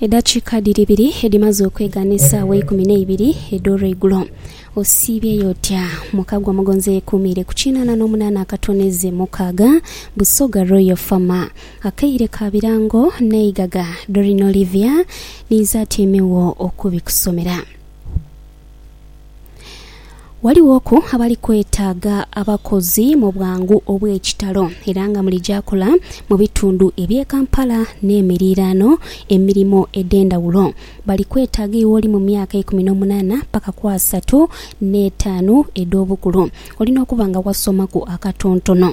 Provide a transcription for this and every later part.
Edakiika dhiri ibiri edhimaze okwegha n'esaawa eikumi n'eibiri edh'olweigulo. Osiibyeyo otya? Muka gwa Mugonza eyekuumiire ku kinaana n'omunaana akatono ezze mukaaga, Busoga Royal Fama. Akaire ka birango n'eigaga, Doreen Olivia ninze atyaime wo okubikusomera. Ghalighoku abali kwetaaga abakozi mu bwangu obw'ekitalo era nga muli gyakola mu bitundu eby'e Kampala n'emiriraano emirimo edh'endhawulo. Bali kwetaaga iwe oli mu myaka ikumi n'omunaana paka ku asatu n'etaanu edh'obukulu. Olina okuba nga wasomaku akatontono.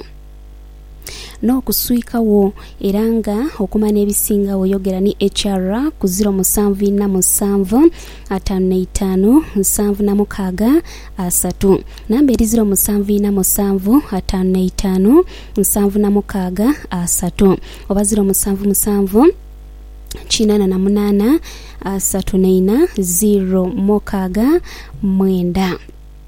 n'okuswika wo era nga okuma n'ebisinga wo yogera ni HR ku ziro musanvu inha musanvu ataanu na itaanu nsanvu na mukaaga asatu. Namba eri ziro musanvu inha musanvu ataanu na itaanu nsanvu na mukaaga asatu oba ziro musanvu musanvu kinana na munana asatu na inha ziro mokaaga mwenda.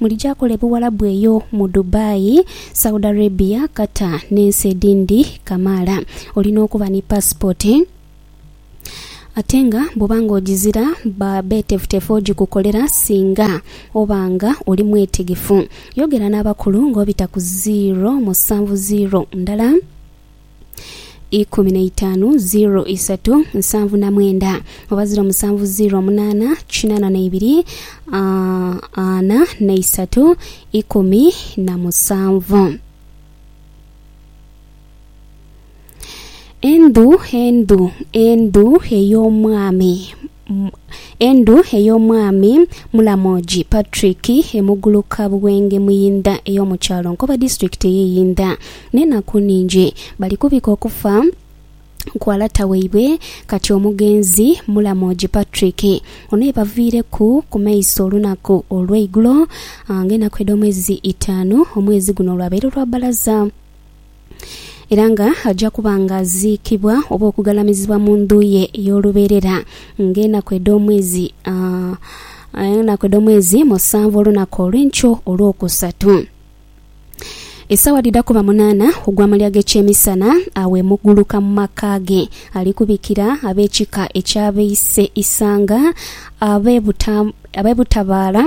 Mulija kola ebuwalabu eyo mu Dubai, Saudi Arabia, Qatar ne nsi edindi kamaala. Olina okuba ni passport ate nga bwoba nga ojizira ba betefutefu ojikukolera singa oba nga oli mwetegefu. Yogera n'abakulu nga obita ku ziro musanvu ziro ndala. ikumi na itaanu ziro isatu nsanvu na mwenda oba ziro musanvu ziro munaana kinana na ibiri ah, ana na isatu ikumi na musanvu. Endhu endhu endhu ey'omwami Endhu ey'Omwami Mulamoji Patrick e Muguluka Buwenge Muyindha ey'omu kyalo Nkoba Disitulikiti ey'e Yindha n'enaku nhingi bali kubika okufa kwa lata waibwe kati omugenzi Mulamoji Patrick ono yebaviireku ku maiso olunaku olweigulo nga enaku edh'omwezi itaanu omwezi guno olwabaire lwa balaza. era nga aja kuba nga aziikibwa oba okugalamizibwa mu ndhu ye ey'olubeerera ng'enaku edh'omwezi, enaku edh'omwezi musanvu olunaku olw'enkyo olwokusatu. Esaawa dhidha kuba munaana ogwa malya g'ekyemisana, agho emuguluka mu maka ge alikubikira ab'ekika eky'abeise isanga, ab'e butabaala.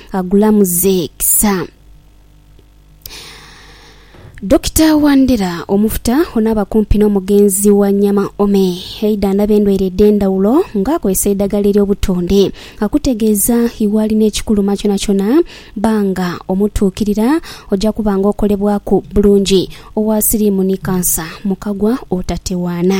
Agulamuze kisa. Dokita Wandera, Omufuta onaaba kumpi n'omugenzi wa nyama ome eidha ndaba endwaire edh'endhawulo nga akozesa eidhagala ery'obutonde. Akutegeeza iwe alina ekikuluma kyonakyona bba nga omutuukirira oja kuba nga okolebwaku bulungi. Owa siriimu ni kansa mukagwa otatewaana.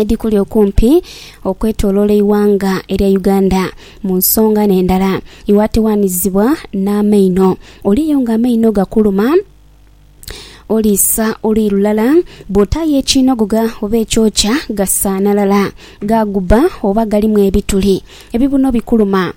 edhikuli okumpi okwetoloola eighanga erya Uganda mu nsonga n'endala. Iwe atewaanizibwa n'amaino, oliyo nga amaino gakuluma, oliisa oluyi lulala, bw'otaayo ekinogogha oba ekyokya gasaanalala, gaagubba oba galimu ebituli. Ebibuno bikuluma,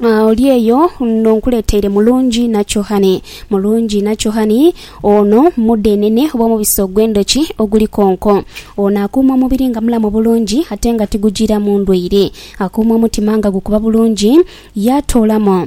Oli eyo n'onkuleteire mulungi nacohani. Mulungi nacohani ono mudhenene oba omubisi ogw'endhoki oguli konko. Ono akuuma omubiri nga mulamu bulungi ate nga tigujiiramu ndwaire. Akuuma omutima nga gukuba bulungi, yaatoolamu.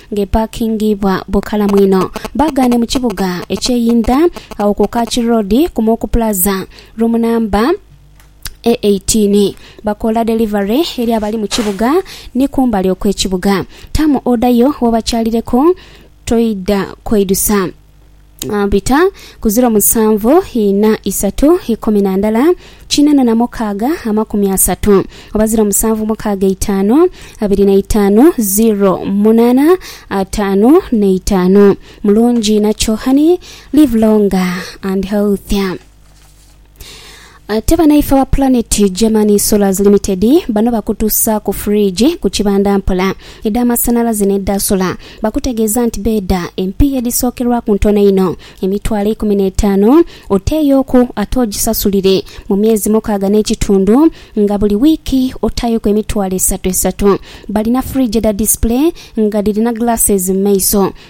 ng'epaakingibwa bukalamu inho. Baagaane mu kibuga eky'eyindha agho ku Kach Road ku Moku Plaza, room namba e eitiini. Bakoola delivery eri abali mu kibuga ni kumbali okw'ekibuga. Taamu oda yo w'obakyalireku, toidha kweidusa. Bita ku ziro musanvu ina isatu ikumi na ndala kina na na mukaaga amakumi asatu oba ziro musanvu mukaaga itaanu abiri na itaanu ziro munaana ataanu na itaanu. Mulungi inha kyohani. Live longer and healthier. Ate banaife aba Planet German Solars Limited bano bakutuusaaku fridge ku kibanda mpola, edha masanalaze n'edha sola. Bakutegeeza nti beedha empiiya edhisookerwaku ntono inho, emitwalo eikumi n'etaanu oteeyooku ate ogisasulire mu myezi mukaaga n'ekitundu nga buli wiiki otaayoku emitwalo esatu esatu. Balina fridge edha display nga dhirina glasses mu maiso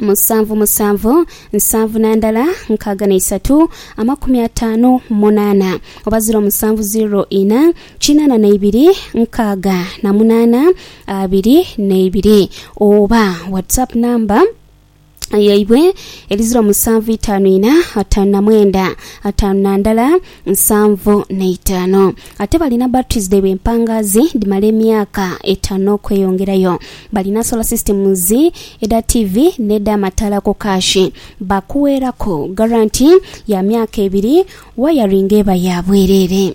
musanvu musanvu nsanvu na ndala nkaaga na isatu amakumi ataanu munaana oba ziro musanvu ziro ina kinaana na ibiri nkaaga na munaana abiri na ibiri oba whatsapp namba yaibwe eri ziro musanvu itaanu ina ataanu na mwenda ataanu na ndala nsanvu na itaanu. Ate balina batteries dhaibwe empangaazi dhimala emyaka etaanu n'okweyongerayo. Balina solar systems, edha TV n'edh'amataala ku kaashi. Baakuweeraku garanti ya myaka ebiri, wayaringi eba ya bwereere.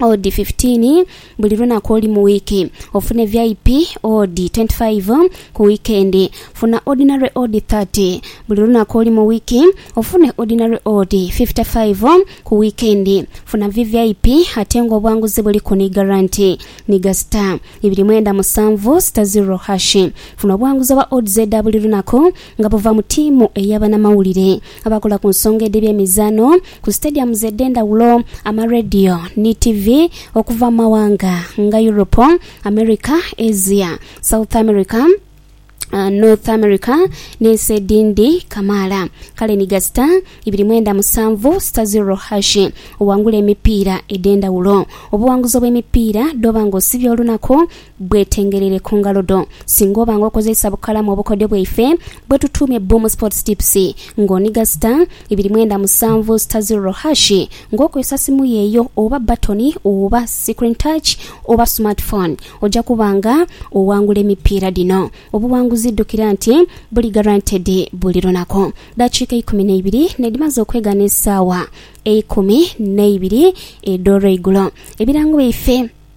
odi fifitiini buli lunaku olu mu wiiki. Ofune VIP odi twenti faivu ku wiikendi. Funa odinale odi thati buli lunaku olu mu wiiki. Ofune odinale odi fifita faivu ku wiikendi. Funa VVIP ate nga obwanguzi buliku ni garanti. Nhiga sita ibiri mwenda musanvu sita ziro hashi. Funa obwanguzi obwa odds edha buli lunaku nga buva mu tiimu ey'abanamawulire. abakola ku nsonga edh'ebye emizaano ku sitediyamuzi edh'endhawulo, amarediyo ni tivi okuva mu mawanga nga Europe, America, Asia, South America, North America n'ensi edhindi kamaala. Kale ni gasita ibiri mwenda musanvu sita ziro hashi owangule emipiira edh'endhawulo. Obuwanguzi obw'emipiira dh'oba nga osibye olunaku Bwetengerere ku ngalo dho. Singa oba nga okozeisa bukalamu obukodyo bwaife bwe tutuumye Boom Sports Tips nga oniga star, ibiri mwenda musanvu star ziroro hash nga okozesa simu yo eyo oba batoni oba screen touch oba smart phone oja kuba nga owangula emipiira dhino. Obuwanguzi ddukira nti buli guaranteed buli lunaku. Ddakiika eikumi n'eibiri nedhimaze okwegana esaawa eikumi n'eibiri edh'olweigulo. Ebirango byaife.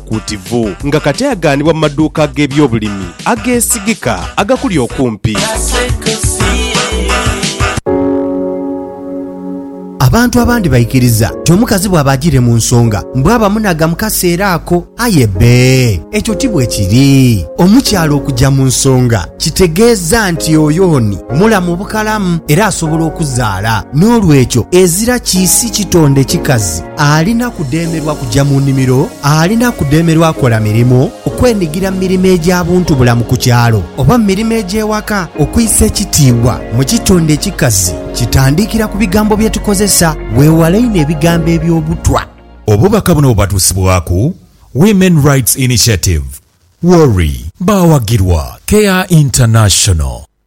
Kuutivu nga kati aghanibwa mu maduuka ag'ebyobulimi ageesigika agakuli okumpi. Abantu abandi baikiriza nti omukazi bwaba ajiire mu nsonga mbu aba munagha mu kaseera ako. Aye bbe, ekyo ti bwe kiri. Omukyala okuja mu nsonga kitegeeza nti oyo ni mulamu bukalamu era asobola okuzaala. N'olwekyo ezira kiisi kitonde kikazi. Alina kudheemerwa kuja mu nimiro, alina kudheemerwa kola mirimu, okwenigira mu mirimo egya buntubulamu ku kyalo, oba mu mirimo egy'ewaka. Okwisa ekitiibwa mu kitonde ekikazi kitandikira ku bigambo bye tukozesa. Weewale inho ebigambo eby'obutwa. Obubaka buno bubatuusibwaku Women Rights Initiative, WORI. Baawagirwa Care International.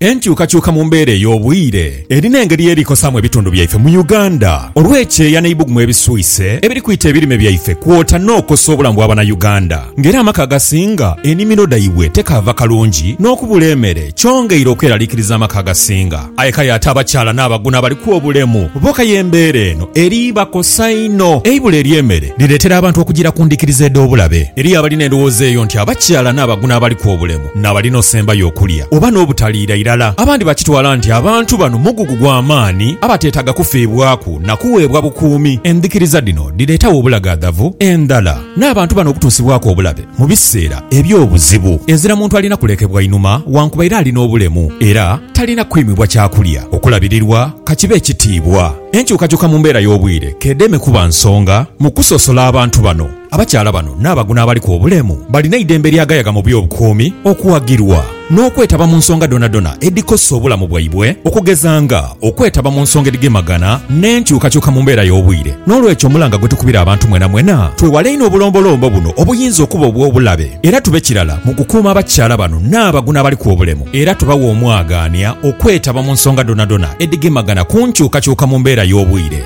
Enkyukakyuka mu mbeera ey'obwire eri n'engeri ye likosaamu ebitundu byaife mu Uganda olw'ekyeeya n'eibugumu ebiswise ebiri kwita ebirime byaife kwota n'okosa obulamu bwa Banauganda nga era amaka agasinga enimiro dhaibwe tekaava kalungi n'okubula emere kyongeire okweralikiriza amaka agasinga aye kale ate abakyala n'abaguno abaliku obulemu boka y'embeera eno eri bakosa inho. Eibula ery'emere liretera abantu okugira ku ndhikiriza edh'obulabe. Eriyo abalina endhowooza eyo nti abakyala n'abaguno abaliku obulemu n'abali n'osembayo okulya oba n'obutaliira irala. Abandi bakitwala nti abantu bano mugugu gwa maani abateetaaga kufiibwaku na kuweebwa bukuumi. Endhikiriza dhino dhireetawo obulagaadhavu endhala n'abantu bano okutuusibwaku obulabe mu biseera eby'obuzibu. Ezira muntu alina kulekebwa inhuma wankubaire ali n'obulemu era talina kwimibwa kyakulya, okulabirirwa ka kibe ekitiibwa. Enkyukakyuka mu mbeera y'obwire k'edheeme kuba nsonga mu kusosola abantu bano. Abakyala bano n'abaguno abaliku obulemu balina eidembe lyagayaga mu by'obukuumi, okuwagirwa, n'okwetaba mu nsonga dhonadhona edhikosa obulamu bwaibwe okugeza nga okwetaba mu nsonga edhigemagana n'enkyukakyuka mu mbeera y'obwire. N'olwekyo omulanga gwe tukubira abantu mwenamwena twewale inho obulombolombo buno obuyinza okuba obw'obulabe era tube kirala mu kukuuma abakyala bano n'abaguno abaliku obulemu era tubawe omwagaanya okwetaba mu nsonga dhonadhona edhigemagana ku nkyukakyuka mu mbeera y'obwire.